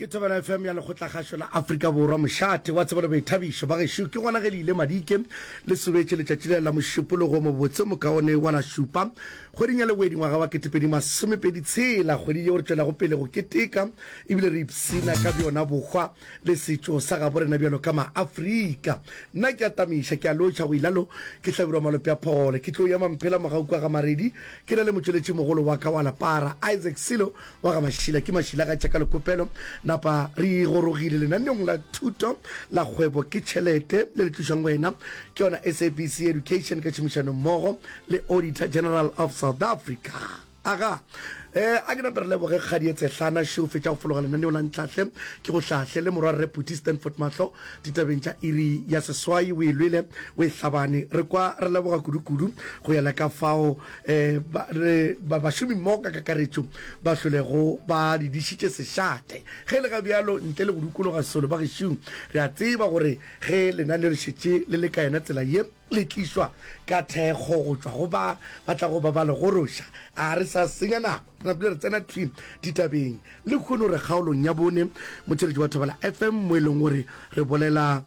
ke thobela fm ya lekgotlakgašo la afrika borwa mošate wa tsebelo boithabišo ba gešo ke gona ge le ile madike le sobetše letšatši le la mošupologo mobotse mokaone wa la šupa kgweding ya lewedi ngwaga wa ketepedi masomepedi tshela kgwedi yeo re tšwelago pele go keteka ebile re ipsina ka bjona bokgwa le setšo sa gabo rena bjalo ka ma-Afrika. Nna ke a tamiša, ke a lotšha go ilalo, ke hlabirwa malope a phole. Ke tlo ya Mamphela mogau kwa ga Maredi, ke na le motšweletši mogolo wa ka wa Lapara, Isaac Silo wa ga Mašila. Ke Mašila ga tša ka lekopelo. Napa re gorogile lenaneong la thuto la kgwebo ke tšhelete le le tlišwang go wena ke yona SABC Education ka tšhomišano mmogo le Auditor General of South Africa. Aga, e, a ke nape re leboge Kgadi Etsehlana Sheo fetša go fologa lenaneo la ntlhahle ke go hlahle le morwa Rre Phuti Stanford Mahlo ditabeng tša iri ya seswai o e lwele o e hlabane re kwa re leboga kudu-kudu go ya le ka fao e, ba, re, ba, bašomi mmogo ka kakaretšo ba hlolego ba di dišitše sešate ge le ga bjalo ntle le go dukologa solo bagešung re a tseba gore ge lenaneo le šetše le le ka yena tsela ye le tlišwa ka thekgo go tšwa go ba ba tla go babala go roša. A re sa senya nako, re napile re tsena thwi ditabeng. Lekhono re kgaolong ya bone, motšweletši wa Thobela FM, mo e leng gore re bolela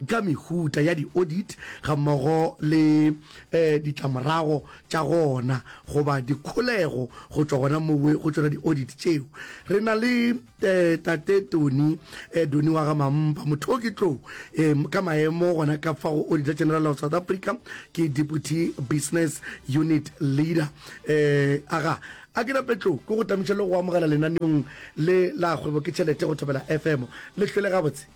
ka mehuta ya di-audit gammogo le um ditlamorago tša gona goba dikholego go tšwa gona mowe go tšona di-audit tšeo. Re na le. Ee, Tate Tony, eh, Doni wa ga Mampa, motho o ke tlou eh, ka maemo gona ka fa go Auditor General of South Africa, ke Deputy Business Unit Leader. Eh, aga, a ke nape tlou ke go tamiša le go amogela lenaneong le la kgwebo ke tšhelete go Thobela FM. Le hlwele gabotse.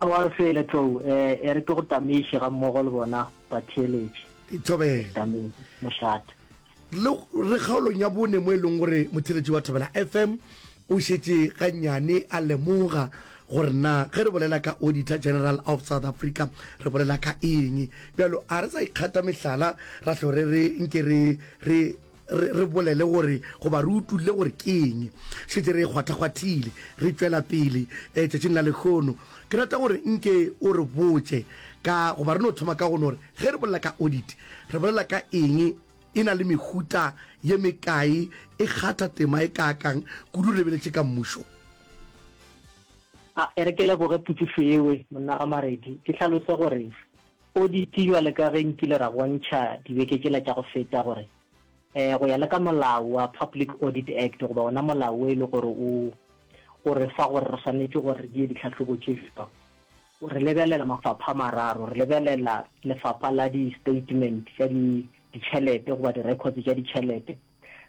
Aowa re fele tlou, eh, e re ke go tamiše ga mmogo le bona batheeletši. Thobela. Tamiše, mošate. Le re kgaolong ya bone mo e leng gore motheletši wa Thobela FM o šetše gannyane a lemoga gore na ge re bolela ka Auditor General of South Africa re bolela ka eng, bjalo a re sa ikgata mehlala ra hlo re re nke re re re re bolele gore goba re utulle gore ke eng. Šetše re e kgwathakgwathile re tšwela pele tšatšing la lekgono ke rata gore nke o re botše ka goba re no thoma ka go no re Ge re bolela ka audit, re bolela ka eng? E na le mehuta ye mekae? E kgatha tema e kaakang? Kudu re lebeletše ka mmušo. A e re ke leboge potšišo yewe, monna Ramaredi. Ke hlalose gore audit bjale ka ge nkile ra bontšha dibeke tšela tša go feta gore go ya le ka molao wa Public Audit Act goba wona molao wo e le gore o o re fa gore re swanetše gore re die ditlhahlobo tše bjang, Re lebelela mafapha a mararo. Re lebelela lefapha la di-statement tša ditšhelete goba di-records tša ditšhelete.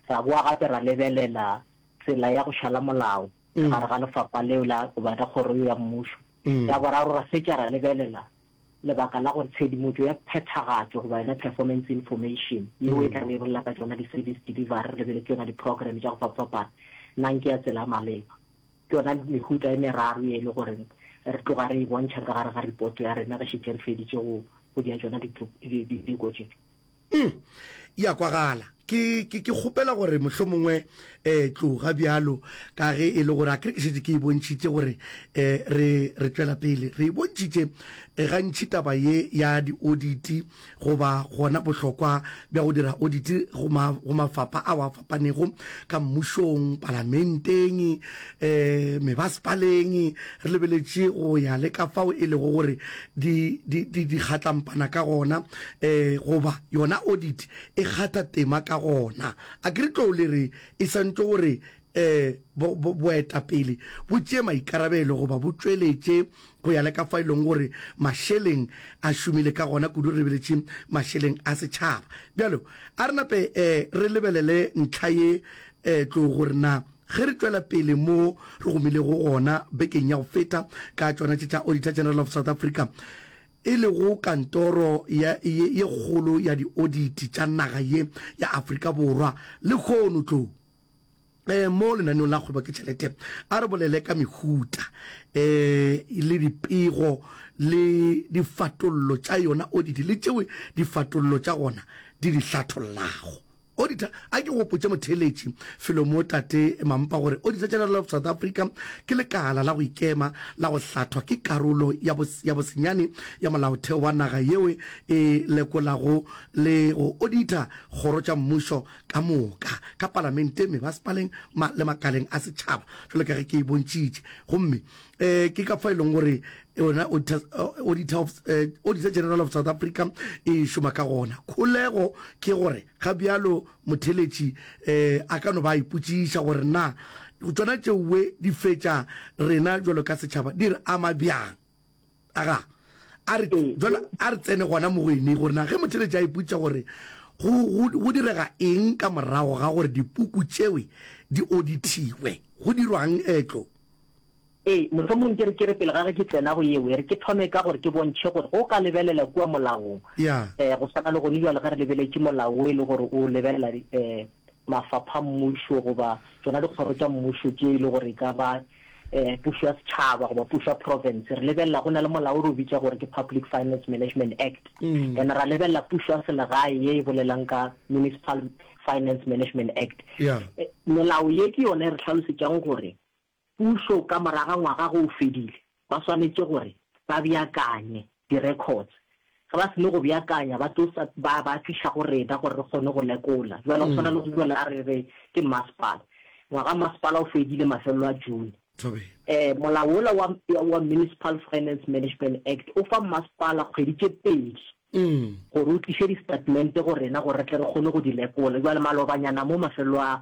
Ra bowa gape ra lebelela tsela ya go šala molao ka gare ga lefapha leo la goba la kgoro eo ya mmušo. Ya boraro, ra fetša ra lebelela lebaka la gore tshedimotšo ya phethagatšo goba yona performance information yeo e tla be e bolela ka tšona di-service delivery re lebeletse yona di-program tša go fapafapana na ke ya tsela ya maleba. Ke yona mehuta e meraro ye e le gore re tloga re e bontšha ka gare ga ripoto ya rena re šetše re feditše go go dira tšona diteko tše. Um, e a kwagala. Ke, ke, ke kgopela gore mohlomongwe, eh, tloga bjalo, ka ge e le gore akere ke šetše ke e bontšhitše gore, eh, re, re tšwela pele re e bontšhitše, eh, gantši taba ye ya dioditi. goba gona bohlokwa bja go dira oditi go ma, go mafapa ao a fapanego ka mmušong, palamenteng, um mebasepaleng, re lebeletše go ya le ka fao e lego gore di, di, di, di kgatlampana ka gona, um goba yona oditi e kgatha tema ka gona. A ke re tlou le re e santšwe gore Ee, bo, bo, boetapele bo tšee maikarabelo goba bo tšweletše go ya le ka fa e leng gore mašeleng a šomile ka gona kudu, re lebeletše mašeleng a setšhaba. Bjalo, a re nape eh, re lebelele ntlha ye eh, tlo gore na ge re tšwela pele mo re gomilego gona bekeng ya go feta ka tšona tše tša Auditor General of South Africa, e lego kantoro ya, ye, ye kgolo ya dioditi tša naga ye ya Afrika Borwa, lehono tlo. um mo lenaneong la kgwebo ke tšhelete a re bolele ka mehuta um le dipego le difatollo tša yona oditi le tšeo difatollo tša gona di di hlathollago odita a ke gopotše motheeletši felomo tate mampa gore odita general of south africa ke lekala la go ikema la go hlathwa ke karolo ya bosenyane ya molaotheo wa naga yeo e lekolago le go odita kgoro tša mmušo ka moka ka palamente, mebasepaleng ma, le makaleng a setšhaba, jalo ka ge ke e bontšitše. Gomme um ke ka fo e leng gore yona Auditor, Auditor, of, Auditor General of South Africa e šoma ka gona. Kholego ke gore ga bjalo motheletši um a ka no ba a ipotšiša gore na tšona tšeoe di fetša rena bjalo ka setšhaba di re ama bjang. aga a re Ee. jwale a re tsene gona mo go ene gore na ge motheletši a ipotša gore go, go, go direga eng ka morago ga gore dipuku tšewe di odithiwe go dirwang etlo Ee, mohlomong ke re ke re pele ga ge ke tsena go yeo e re ke thome ka gore ke bontšhe gore go ka lebelela kua molaong ya eh go swana le gone jwale ge re lebeletše molao o e le gore o lebelela eh mafapha mmušo goba tsona dikgoro tša mmušo tše e le gore e ka ba um pušo ya setšhaba goba pušo ya province re lebelela go na le molao re o bitša gore ke public finance management act mm. and ra lebelela pušo ya selegae ye e bolelang ka municipal finance management act yeah. Eh, melao ye ke yone e re tlhalosetšang gore pušo ka moraga ngwaga go o fedile ba swanetše gore ba beakanye di-records. Ge ba seno go beakanya, ba tlo sa, ba, ba tliša go rena gore re kgone go lekola. Jwale go swana le go jwale a re re ke mmasepala. Ngwaga wa mmasepala o fedile mafelelo a June. Thobela. Eh, molao wola wa, wa Municipal Finance Management Act o fa mmasepala kgwedi tše pedi gore o tliše di-statement go rena gore re tle re kgone go di lekola. Jwale malobanyana mo mafelelo a,